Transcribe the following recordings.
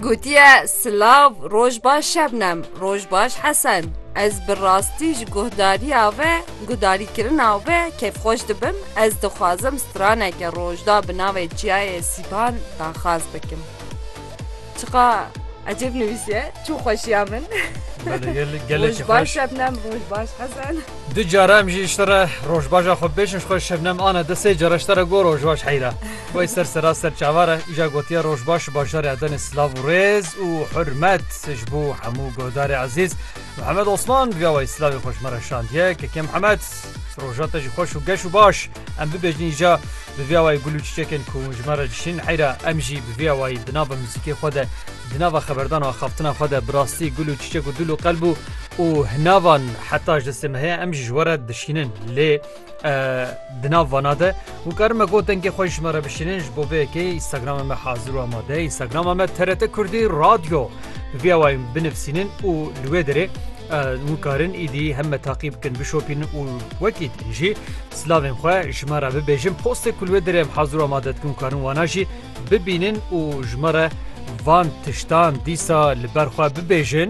Gotiye, Silav, roj baş Şebnem, roj baş Hesen. Ez bi rastî ji guhdariya ve, guhdarîkirina we kêfxweş dibim, ez dixwazim straneke rojda bi navê Çiyayê Sîpan daxwaz bikim. Çiqa ecêb nivîsiye, çû xweşiya min. Roj baş Şebnem, roj baş Hesen. Du cara em jî ji te re rojbaşa xwe bêjin, ji xwe Şebnem ane di sê cara ji te re got rojbaş Heyra. Wê ser sera ser çavar e îja gotiye roj baş ji bajarê Adenê silav û rêz û hurmet ji bo hemû guhdarê ezîz Mihemed Osman riya wayî silavê xwe ji me re şandiye KK Mihemed roja te jî xweş û geş û baş em bibêjin îja bi vê awayî gul û çîçekên ku ji me re dişîn heyra em jî bi vê awayî di nava muzîkê xwe de di nava xeberdan û axaftina xwe de bi rastî gul û çîçek û dil û qelb û û hinavan heta ji destê me heye em jî ji we re dişînin lê Di nav vana de hûn karin me got dengê xwe ji me re bişînin ji bo vê yekê Instagrama me hazir û amade ye Instagrama me TRT Kurdî Radyo bi vê awayê binivîsînin û li wê derê hûn karin îdî hem me taqî bikin bişopînin û wekî din jî silavên xwe ji me re bibêjin postê ku li wê derê em hazir û amade dikin karin wana jî bibînin û ji me re van tiştan dîsa li ber xwe bibêjin.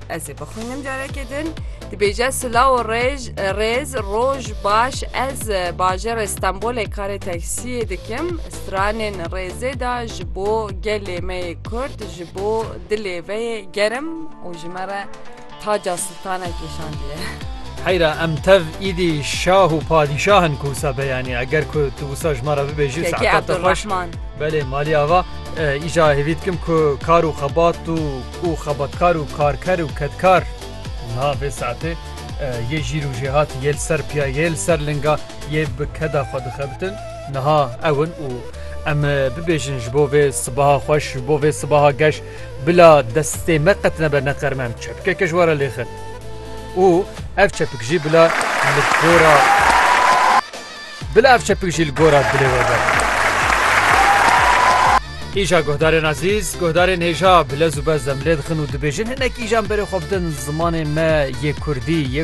Ez ê bixwînim carekê din. Dibêje silaw û rêj rêz roj baş ez bajarê Stenbolê karê teksiyê dikim stranên rêzê da ji bo gelê me yê Kurd ji bo dilê ve yê gerim û ji me re taca siltane kêşandiye. Heyra em tev îdî şah û padîşah in ku wisa be yanî eger ku tu wisa ji me re bibêjî Kekê saeta te xweş Abdurrahman. belê malî ava e, îja hêvî dikim ku kar û xebat û û xebatkar û karker û kedkar. Niha vê saetê yê jîr û jêhat yê li ser piya yê li ser linga yê bi keda xwe dixebitin niha ew in û em bibêjin ji bo vê sibaha xweş ji bo vê sibaha geş bila destê me qet nebe neqer me em çepkeke ji we re lêxin û ev çepik jî bila li gora Bila ev çepik jî li gora dilê we be. Îja guhdarên ezîz, guhdarên hêja bi lez û bezdem lê dixin û dibêjin hinek îjan berê xwe bidin zimanê me yê Kurdî yê